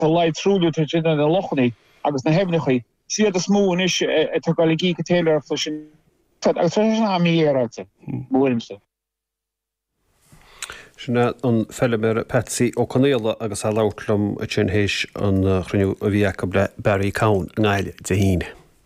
Tá a laghad truailliú tar éis déanamh ar na lochanna agus na haibhneacha. Is iad is mó anois atá ag dul ag íoc an téiléireacht leis an stát, agus tá sé sin thar a bheith mífhéaráilte, i mo thuairimse. Sin an feilméara Patsy Ó Conaola agus é ag labhairt liom ansin théis an chruinniú a bhí acu le Barry Cowen i nGaillimh Dé hAoine.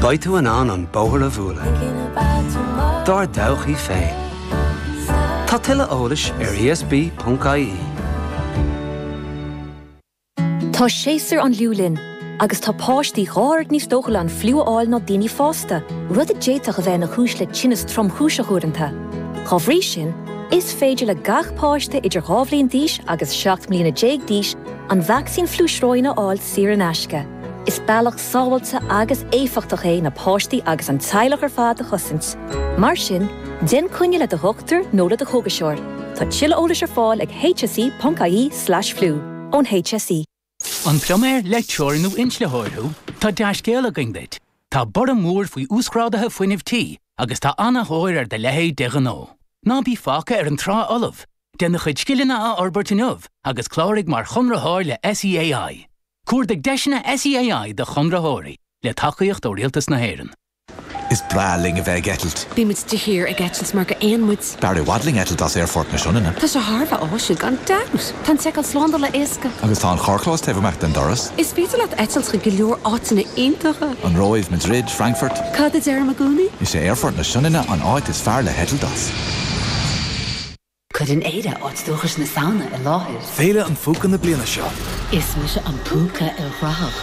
Beidh tú in ann an bóthar a bhualadh dár dtodhchaí féin. Tá tuilleadh eolais ar ESB.ie. Tá séasúr an fhliú linn agus tá páistí dhá oiread níos dóchúla an fliú a fháil ná daoine fásta, rud a d'fhéadfadh a bheith ina chúis le tinneas tromchúiseach uaireanta. Dá bhrí sin, is féidir le gach páiste idir dhá bhliain d'aois agus seacht mbliana déag d'aois an vacsaín fliú sróine a fháil saor in aisce. Is bealach sábháilte agus éifeachtach é na páistí agus an teaghlach ar fad a chosaint. Mar sin, déan coinne le do dhochtúir nó le do chógaiseoir. Tá tuilleadh eolais ar fáil ag hse.ie slash flu. Ón HSE. An pluiméir, leictreoir nó inslitheoir thú? Tá dea-scéal againn duit! Tá borradh mór faoi uasghráduithe fuinnimh tí agus tá ana-thóir ar do leithéid de ghnó. Ná bí fágtha ar an trá fholamh! Déan do chuid scileanna a fhorbairt inniu agus cláraigh mar chonraitheoir le SEAI. Cuardaigh deiseanna SEAI do chonraitheoirí le tacaíocht ó Rialtas na hÉireann. Is breá linn a bheith ag eitilt. Bíonn muid de shíor ag eitilt mar gur éin muid. B'fhearr i bhfad linn eitilt as Aerfort na Sionainne. Tá sé thar a bheith áisiúil, gan dabht! Tá an tseiceáil slándála éasca. Agus tá an carrchlós taobh amuigh den doras. Is féidir leat eitilt chuig go leor áiteanna iontacha. An Róimh, Madrid, Frankfurt. Cad a deirim i gcónaí? Is é Aerfort na Sionainne an áit is fearr le heitilt as. Cuireann Éire áit dúchais na Samhna i láthair. Féile an Phúca na bliana seo. Is mise an Púca ilchruthach.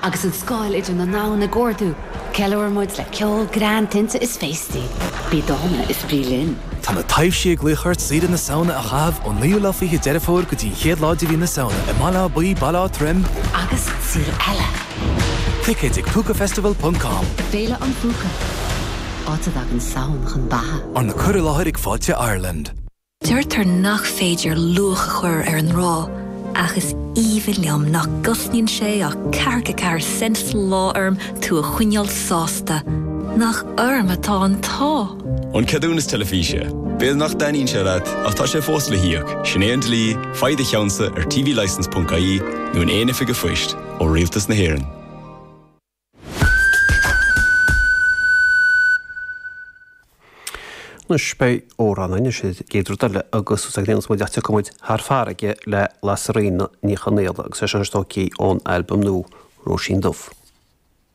Agus an scáil idir na ndomhan ag ardú, ceiliúrann muid le ceol, greann, tinte is féastaí. Bí dána is bí linn! Tá na taibhsí ag glaoch ort saoire na Samhna a chaitheamh ón naoú lá fiche Deireadh Fómhair go dtí an chéad lá de mhí na Samhna i mBaile Átha Buí, Baile Átha Troim, Agus saol eile! Ticéid ag Púcafestival.com. Féile an Phúca. áit a dtagann Samhain chun beatha. Arna cur i láthair ag Fáilte Ireland. Deirtear nach féidir luach a chur ar an ngrá, ach is aoibhinn liom nach gcosnaíonn sé ach ceathracha ceathair cent sa lá orm tú a choinneáil sásta. Nach orm atá an t-ádh! An ceadúnas teilifíse. B'fhéidir nach dtaitníonn sé leat, ach tá sé fós le híoc, sin é an dlí, faigh do cheannsa ar tvlicence.ie nó in aon oifig a' phoist, ó Rialtas na hÉireann. Anois beidh amhrán againn, sa gcéad rud eile agus is ag déanamh muid leat a bheidh muid thar farraige le Lasairfhíona Ní Chonaola agus seisean ar Stocaí ón albam nua Róisín Dubh.